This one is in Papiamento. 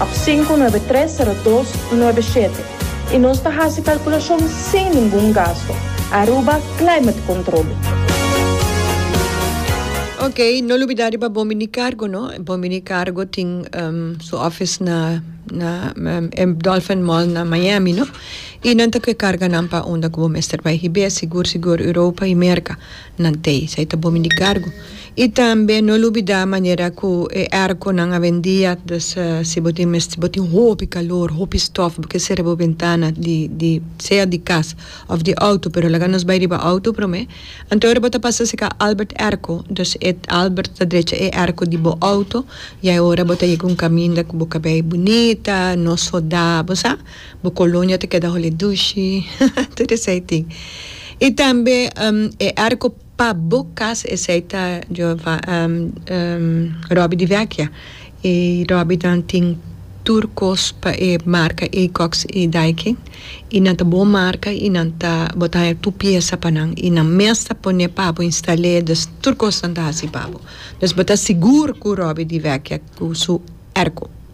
Op sinku nuebe tres sero dos nuebe shete i nos ta hasi kalkulashon sin ningun gasto. Aruba Climate Control. Ok, no lubidá riba Bon Bini Cargo no. Bon Bini Cargo tin su office na Dolphin Mall na Miami no. I nan ta ke carga nan pa unda ku bo mester bai hib'é sigur sigur Europa i Merka. nan t'ei, esei ta bomi di kargu. I tambe no lubidá manera ku e èrkonan a vendia, dus si bo tin mes si bo tin hopi kalor, hopi stòf, bo ke sera bo bentana di di sea di kas òf di outo, pero laga nos bai riba outo promé, anto ora bo ta pasa seka Albert èrko, dus e Albert ta drecha e èrko di bo outo, ya e ora bo ta yega un kaminda ku bo kabei bunita, no sodá, bo sa. Bo colonia ta keda holi dushi, tur esey tin. Y tambe e arco pa bo cas esey ta Robbie di Vecchia. Y Robbie dan tin tur cos pa e marca Aecox y Daikin y nan ta bo marca y nan ta bo ta haya tur pieza pa nan y nan mes ta pone pa bo instale dus tur cos nan ta haci pa bo. Dus bo ta sigur cu Robbie di Vecchia cu su arco.